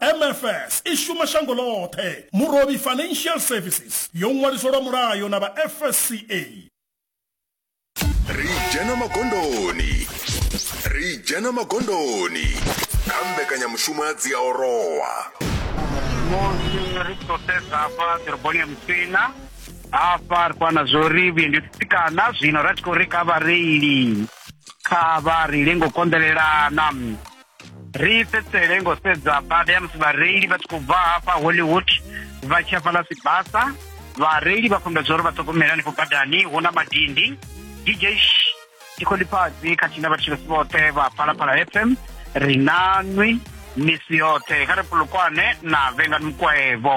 mfs i shuma shango ḽoṱhe murovhi financial services yo ṅwaliswa lwa mulayo na vha fsca ri dzhena magondoni ri dzhena magondoni kha mbekanyamushumo ya dziaorowa musi ri tshi khou sedza hafha ḓoroboni ya musina hafha ri khou ana zwo ri vhuendi u tsitsikana zwino ra tshi khou ri kha vhareili kha vha ri lengo konḓelelana ri fhedzisele ngo sedza bada ya musi vhareili vha tshi khou bva hafha hollywood vha tshi hafhaḽa sibasa vhareili vha fhambedza uri vha ṱhogomela hanefho badani hu na madindi dj tikholiphazi khathihi na vhatshilesi vhoṱhe vha phalaphala fm ri na nwi misi yoṱhe kha ri pulukwane na vhengani mukwaevo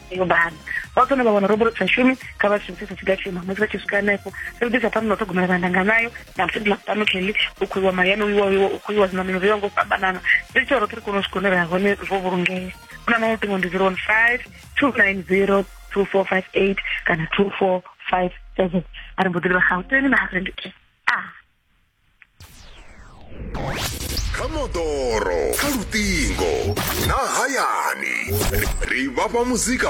yo bana vha kone vha wana roboro sa shumi kha vha shumisese tshiga tshima musi vha tshi swika hanefho ri ḓisa phanḓa na u ṱhogomela vha ndanga nayo na musi ḓila fhano kelly u khou iwa mayani uiwa uiwa u khou iwa zwiṋamelo zwo ya ngo fhambanana ri tshi roṱhe ri kone u swika hune ra hone ro vhulungea u na maṅwe luṱingo ndi zero one five two nine zero two four five eight kana two four five seven a ri mbo ḓi livha gauteng na harendeke a kha moḓoro kha luṱingo na hayani ri vhafha muzika